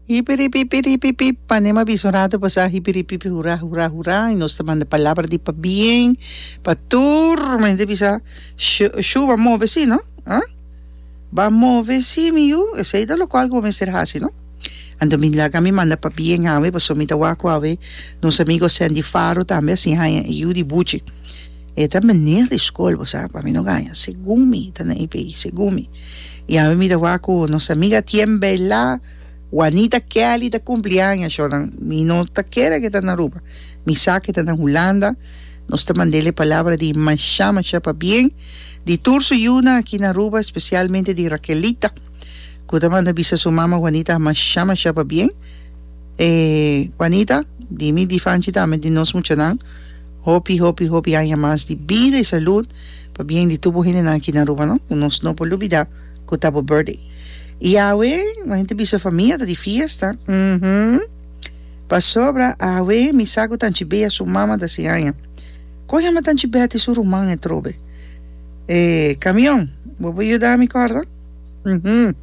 Hipiripipipipi panema bisunrato pasá hipiripipi hurá hurá hurá i nos ta manda palabra di pabien pa tur mente bisa sho shou a move sí no a ba move sí mi yu esei ta lokual ku bo mester hasi no anto mi laga mi manda pabien awe paso mi ta wak ku awe nos amigo Sandy Faro tambe a siña haña e yu di buchi. E ta meneer di school bo sa pa mi no gaña segun mi ta na EPI segun mi y awe mi ta wak cu nos amiga Tien Bella Juanita Kelly ta cumpli aña sho nan mi no ta kere ke ta na Aruba mi sa ke ta na Hulanda nos ta mandele palabra di masha masha pa bien di tur su yu nan aki na Aruba especialmente di Raquelita cu ta manda bisa su mama Juanita masha masha pa bien e Juanita di mi di fanchi tambe di nos muchanan. Hopi hopi hopi aña mas di bida y salud pa bien di tur bo hendenan aki na Aruba no, cu nos no por lubida cu ta bo birthday. Y awe bo hende ta bisa e famia ta di fiesta, uhmm. Pasobra awe mi sa cu Tanchi Bea su mama ta haci aña. Con yama Tanchi Bea tin su ruman etrobe? E camion, bo por yuda mi corda? Uhmm.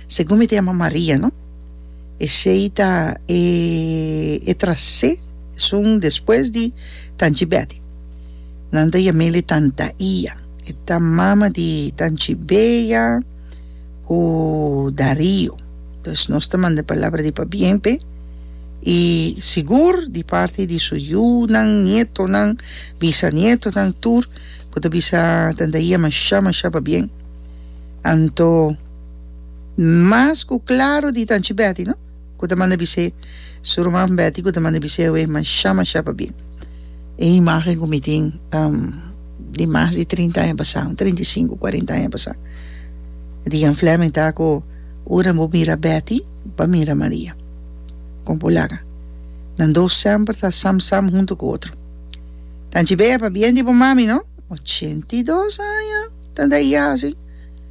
Segun mi ta yama Maria no. Esei ta e tras'é esun despues di Tanchi Betty. Nan ta yam'el e tanta Ia. E ta mama di Tanchi Bea ku Dario. Pues nos ta manda palabra di pabien p'e i sigur di parti di su yunan, nietonan, bisanietonan tur ku ta bisa tanta Ia masha masha pabien. Anto. mas ku klaru di Tanchi Betty no ku ta manda bis'é su ruman Betty ku ta manda bis'é awe masha masha pa bin e imagen ku mi tin di mas di trinta aña pasá un trinta i sinku kuarenta aña pasá di Jan Flemming ta ku ora bo mira Betty pa mira Maria kon por laga nan dos semper ta sam sam huntu ku otro Tanchi Bea pabien di bo mami no ochenta i dos aña ta dei asi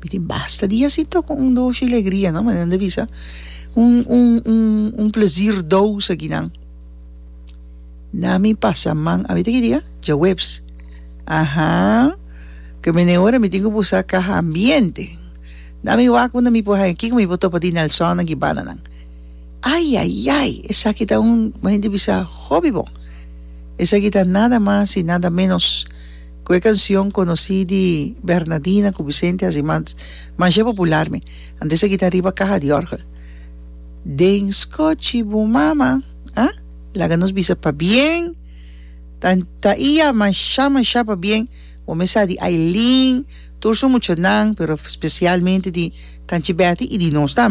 Mi tin basta di hasi tok un un doshi legria no manera nan ta bisa un un un un plezir dous a ginan na mi pasa man abita ki dia djaweps aha ke mene ora mi tin ku busa kaha ambiente na mi wak unda mi por haña kiko mi por topa di nelsonnan ki bananan ayayay esaki ta un manera nan ta bisa hopi bon esaki ta nada mas y nada menos Cu e cancion conoci di Bernadina cu Vicente haci masha popular mi a disa guita riba caha di orgel. Den scoci bo mama ha? Laga nos bisa pabien ta ta iya masha masha pabien bo me sa di Ailin tur su muchanan pero specialmente di Tanchi Betty y di nos tambe.